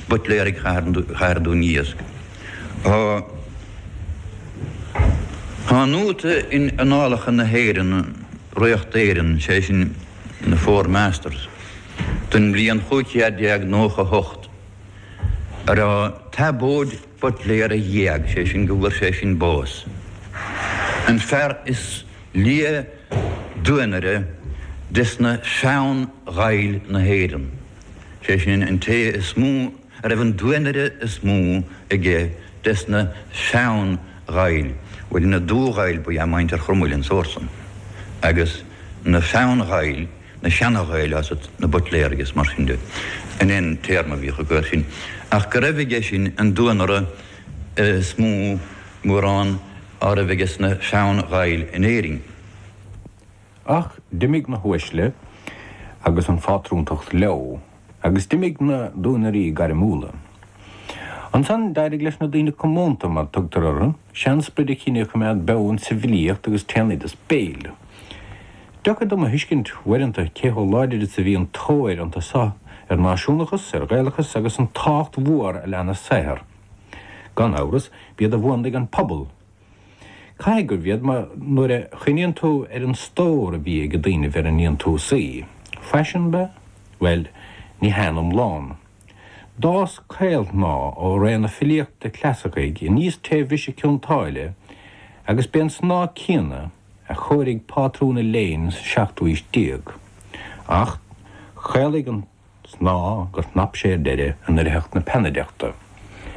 Buitléaraigh Chathair Dúin Iasc. Tá an nóta in Annálacha na hÉireann, Ríocht Éireann, sé sin The Four Masters, don mbliain 1598, ar Thiobóid Buitléar a dh'éag, sé sin go bhfuair sé sin bás, an fear is. Lia duanaire desna Sean Ghaill na hÉireann, sé sin an té is mó a raibh an duanaire is mó aige desna Sean Ghaill, bhuel na Dubh-Ghaill ba ea muintir Chromaill an sórt san, agus na Sean Ghaill, na Seana-Ghaill is ea na Buitléaraigh is mar sin de, sin é an téarma a bhíodh acu air sin, ach go raibh aige sin an duanaire is mó mórán. a raibh aige sna Sean-Ghaill in Éirinn. Ach d'imigh na huaisle agus an phátrúntacht leo, agus d'imigh na duanairí gairmiúla. Ansan d'éirigh leis na daoine comónta, mar tugtar orthu, sean-sprid an chine a choimeád beo in sa bhfilíocht agus trén oideas béil. Deacair dom a thuiscint uaireanta cé chomh láidir is a bhí an tóir iontu so ar náisiúnachas, ar Ghaelachas agus an tábhacht mhór a lean a saothar. Gan amhras, b'iad a mhúnlaigh an pobal. Caithfidh gurbh iad mar nuair a chuimhníonn tú ar an stór a bhí ag daoinibh ar a ndéantúisí. Faisiún ab ea? Bhuel, ní hea in iomlán. D'fhás caolshnáth ó ré na filíochta clasaicí aníos tré bhriseadh Chionn tSáile agus b'é an snáth céanna a chóirigh pátrún an léinn sa seachtú aois déag. Ach chaolaigh an. snáth gur shnap sé ar deireadh i ndoircheacht na peannaideachta.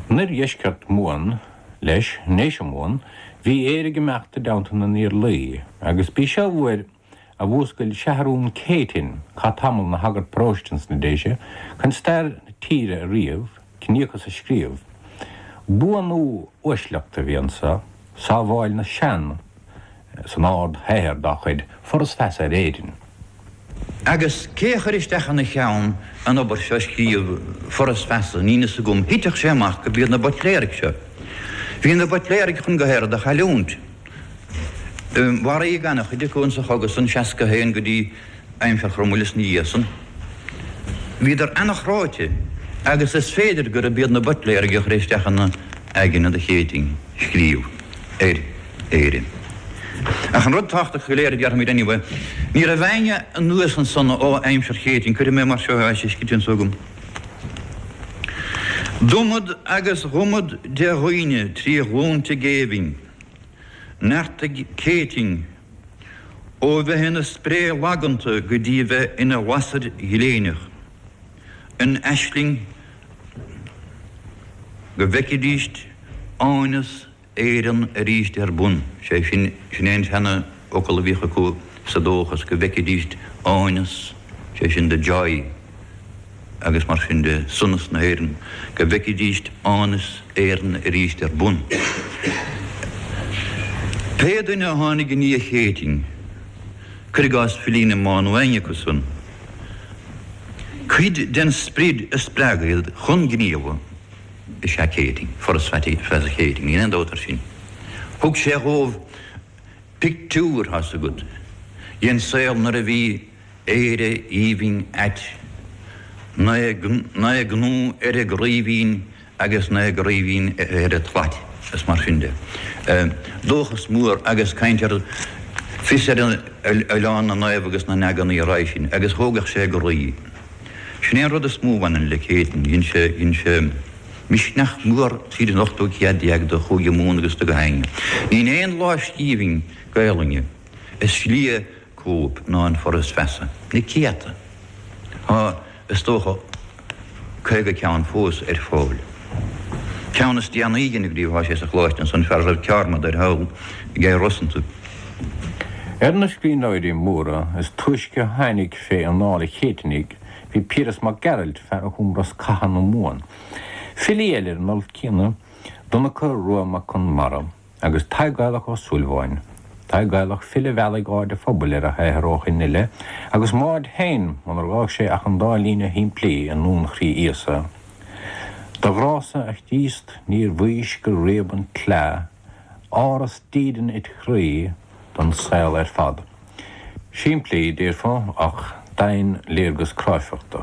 In oirdheisceart Mumhan, leis, i nDéise Mumhan, bhí Éire ag imeacht i dteannta na nIarlaí, agus b'í seo uair a mhúscail Seathrún Céitinn, a chaith tamall ina shagart paróiste ins na Déise, chun stair na tíre a ríomh, ciníochas a scríobh. Buanú uaisleachta a bhí anseo. Sábháil na Sean san ardshaothar dá chuid, Foras Feasa ar Éirinn. Agus cé a chuir isteach ina cheann an obair seo a scríobh Foras Feasa, níl fhios agam, thitfeadh sé amach gurb iad na Buitléaraigh seo. Bhí na Buitléaraigh chun go Héire do chailliúint. Mharaíodh an-chuid acu insa chogadh san, 61 go dtí. Aimsir Chromail is ina dhiaidh san bhíodar an-chráite agus is féidir gurb iad na Buitléaraigh a chuir isteach ina aigne an Chéitinn scríobh ar Éirinn. Ach an rud tábhachtach go léir a déarfaimid inniu, ní raibh éinne anuas ansan ó aimsir Chéitinn, cuirfidh mé mar seo is istigh anso agam. D'iomad agus d'iomad de dhaoine trí ghlúnta géibhinn, neartaigh Céitinn, Ó bheith ina spré laganta go dtí a bheith ina lasair ghléineach, an aisling go bhfeicfidís áineas Éireann arís ar bun, sé sin, sin é an seanfhocal a bhíodh acu sa dóchas go bhfeicfidís áineas, sé sin the joy. agus mar sin de, sonas na hÉireann, go bhfeicfidíst áineas Éireann arís ar bun. Pé duine a tháinig i ndiaidh Chéitinn, cuir i gcás filí na Máighe nó éinne acu san, cuid den sprid a spreag iad chun gníomha is ea Céitinn, Foras Feasa Chéitinn, níl aon dabht air sin. Thug sé dhóibh pictiúr, tá's agat, dhen saol nuair a bhí. Éire aoibhinn ait. Naoi gcnó ar an gcraoibhín agus naoi gcraoibhín ar an tslait, is mar sin de. Dóchas mór agus caint ar fios ar oileán na naomh agus na n-eagnaí a raibh sin agus thógfadh sé a gcroí. Sin é an rud is mó a bhaineann le Céitinn. Dhein sé, dhein sé misneach mór tríd an ochtú céad déag do Chúige Mumhan agus do gach éinne. Níl aon lámhscríbhinn Gaelainne. Is lia cóip ná an Foras Feasa. Na céadta. Tá, is dócha, caoga ceann fós ar fáil. Ceann is déanaí a scríobhadh, tá sé sa Choláiste anso an fear roimh Ceármada ar shaol Ger Rosanta. Ar na scríbhneoirí móra is túisce a tháinig fé anáil an Chéitinnigh bhí Piaras Mac Gearailt, fear a chum Rosc Catha na Mumhan. Filí eile ar an alt céanna, Donncha Rua Mac Conmara, agus Tadhg Gaelach Ó Súilleabháin, Tadhg Gaelach, file a mheallfaidh aird an phobail ar a shaothar ó shin i leith, agus m'aird féin, munar fhág sé ach an dá líne shimplí i nDuan Chroí Íosa, Do ghrá-sa, a Chríost, níor mhaís gur réab an tsleá, Áras dídean id chroí don saol ar fad. Simplí, déarfá, ach doimhinléargas cráifeachta.